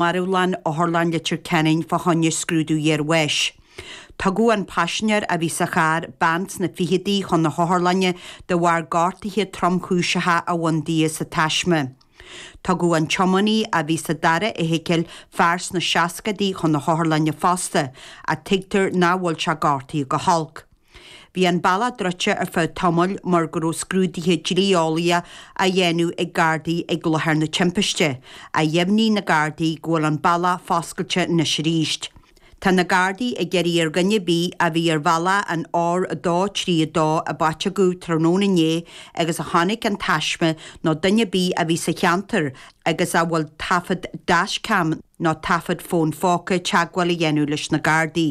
Marbhlann Otharlann Leitir Ceanainn fá choinne scrúdú iar-bháis. Tugadh an paisinéir a bhí sa charr, bean sna ficheadaí, chun na hotharlainne de bharr gortaithe tromchúiseacha a bhain di insa taisme. Tugadh an tiománaí a bhí sa dara fheithicil, fear sna seascaidí, chun na hotharlainne fosta, ach tuigtear nach bhfuil sé gortaithe go holc. Bhí an bealach druidte ar feadh tamaill mar go raibh scrúduithe dlí-eolaíocha á dhéanamh ag Gardaí ag láthair na timpiste, ach dheimhnigh na Gardaí go bhfuil an bealach foscailte anois arís. Tá na Gardaí ag iarraidh ar dhuine ar bith a bhí ar bhealach an R232 i bPaiteagó tráthnóna inné agus a chonaic an taisme nó duine ar bith a bhí sa cheantar agus a bhfuil taifead dashcam nó taifead fón póca teagmháil a dhéanamh leis na Gardaí.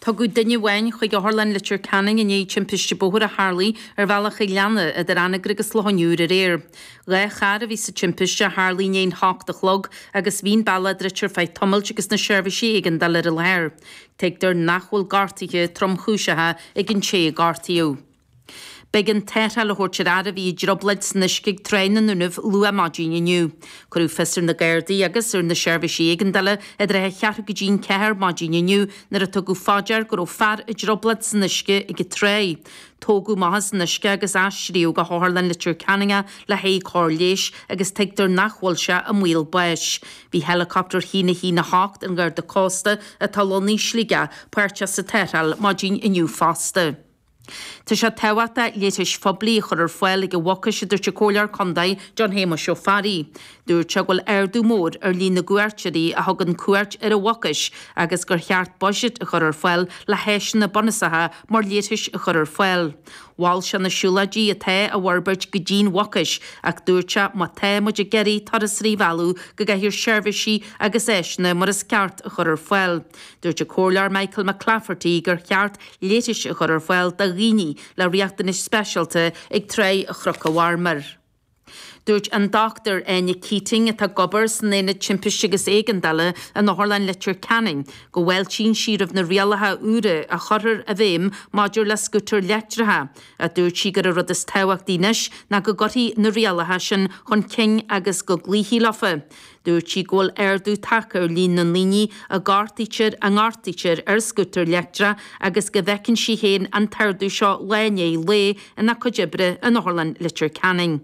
Tugadh duine amháin chuig Otharlann Leitir Ceanainn i ndiaidh timpiste bóthair a tharlaigh ar bhealach Oileána idir Anagaire agus Loch an Iúir aréir. Dhá charr a bhí sa timpiste, a tharlaigh i ndiaidh an h-ocht a chlog, agus bhí'n bealach druidte ar feadh tamailt agus na seirbhísí éigeandála ar an láthair. Tuigtear nach bhfuil gortaithe tromchúiseacha ar an té a gortaíodh. B'éigean tarrtháil a thabhairt ar fhear a bhí i dtriobloid san uisce ag Tráigh na nDúnaibh luath maidin inniu. Cuireadh fios ar na Gardaí agus ar na Seirbhísí Éigeandála i dtrátha a cheathrú go dtí an ceathair maidin inniu nuair a tugadh fá dear go raibh fear i dtriobloid san uisce ag an tráigh. Tógadh amach as an uisce agus aistríodh go hOtharlann Leitir Ceanainn é le haghaidh cóir leighis agus tuigtear nach bhfuil sé i mbaol báis. Bhí héileacaptar a hAon a hAon 8 an Gharda Cósta atá lonnaithe i Sligeach páirteach sa tarrtháil maidin inniu fosta. Tá sé tábhachtach leithris phoiblí a chur ar fáil ag an Mhucais, a dúirt an Comhairleoir Contae John Shéamuis Ó Fearraigh. Dúirt sé go bhfuil ardú mór ar líon na gcuairteoirí a thugann cuairt ar an Mhucais agus gur cheart buiséad a chur ar fáil le háiseanna bunúsacha mar leithris a chur ar fáil. Mhol sé na siúlóidí atá á bhforbairt go dtí an Mhucais ach dúirt sé má tá muid ag iarraidh turasóirí a mhealladh go gcaithfear seirbhísí agus áiseanna mar is ceart a chur ar fáil. Dúirt an Comhairleoir Michael McClafferty gur cheart leithris a chur ar fáil do dhaoine le riachtanais speisialta ag Tráigh Chnoc an Mharmair. Dúirt an Dr Áine Keating, atá ag obair san Aonad Timpiste agus Éigeandála in Otharlann Leitir Ceanainn, go bhfáiltíonn sí roimh na rialacha úra a chuirfear i bhfeidhm maidir le scútair leictreacha, ach dúirt sí gurb é an rud is tábhachtaí anois ná go gcuirfí na rialacha sin chun cinn agus go gcloífí leofa. Dúirt sí go bhfuil ardú tagtha ar líon na ndaoine a gortaítear, a ngortaítear ar scútar leictreach agus go bhfeiceann sí féin an t-ardú seo lá i ndiaidh lae ina cuid oibre in Otharlann Leitir Ceanainn.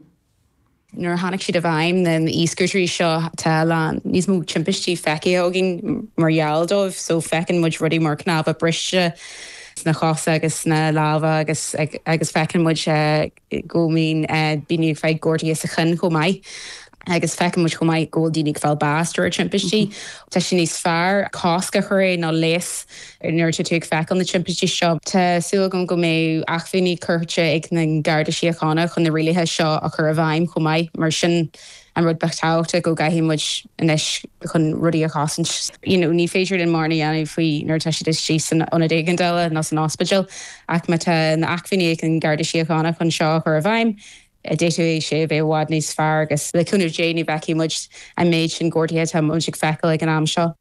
Nuair a tháinig siad i bhfeidhm, na e-scútairí seo, tá a lán níos mó timpistí feicthe againn mar gheall dóibh so feiceann muid rudaí mar cnámha briste sna chosa agus sna lámha agus agus feiceann muid eh, go mbíonn daoine ag fáil gortuithe sa chionn chomh maith. Agus feiceann muid chomh maith go bhfuil daoine ag fáil bás de bharr timpistí. Tá sé níos fearr cosc a chur air, ná leigheas, nuair atá tú ag feiceáil na timpistí seo. Tá súil agam go mbeidh acmhainní curtha ag na Garda Síochána chun na rialaithe seo a chur i bhfeidhm chomh maith, mar sin An rud ba thábhachtaí go gcaithfidh muid anois chun rudaí a chosaint, you know, ní féidir linn mórán a dhéanamh faoi nuair atá siad istigh san ionad éigeandála nó san ospidéal ach má tá na acmhainní ag an Garda Síochána chun seo a chur i bhfeidhm, d'fhéadfadh sé a bheith i bhfad níos fearr agus le cúnamh Dé nach bhfeicfidh muid an méid sin gortuithe atá muid ag feiceáil ag an am seo.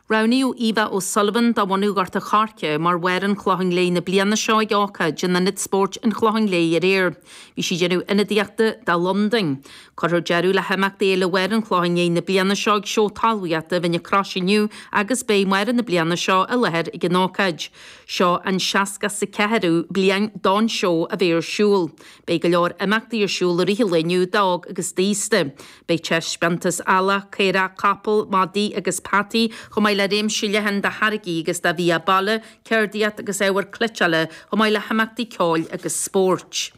Roghnaíodh Eva O'Sullivan de bhunadh Ghort an Choirce mar Mháire an Chlocháin Léith na bliana seo ag ócáid in Ionad Spóirt an Chlocháin Léith aréir. Bhí sí ag déanamh ionadaíochta do Londain. Cuirfear deireadh le himeachtaí Fhéile Mháire an Chlocháin Léith na bliana seo ag seó talmhaíochta Mhín na Croise inniu agus beidh Máire na bliana seo i láthair ag an ócáid. Seo an seasca 's a ceathrú bliain don seó a bheith ar siúl. Beidh go leor imeachtaí ar siúl i rith an lae inniu d'óg agus d'aosta. Beidh taispeántas eallaigh, caorach, capall, madaí agus peataí, chomh maith le réimse leathan de tháirgí agus de bhia baile, ceardaíocht agus ábhar cleiteála, chomh maith le himeachtaí ceoil agus spóirt.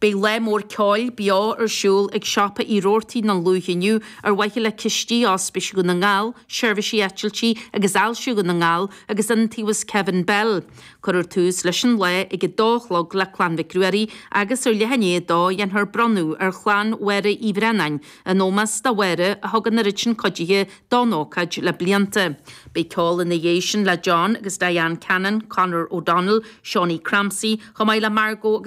Beidh lá mór ceoil beo ar siúl ag Siopa Uí Rabhartaigh i nDún Lúiche inniu ar mhaithe le cistí Ospís Dhún na nGall, Seirbhísí Eitiltí agus Ailse Dhún na nGall agus Iontaobhas Kevin Bell. Cuirfear tús leis an lá ag a dó a chlog le Clann Mhic Ruairí agus ar leath i ndiaidh a dó dhéanfar bronnadh ar Chlann Mháire Uí Bhraonáin, in ómós do Mháire a thug an oiread sin cuidithe don ócáid le blianta. Beidh ceol ina dhiaidh sin le John agus Diane Cannon, Conor O'Donnell, Shaunie Crampsey, chomh maith le Margo agus.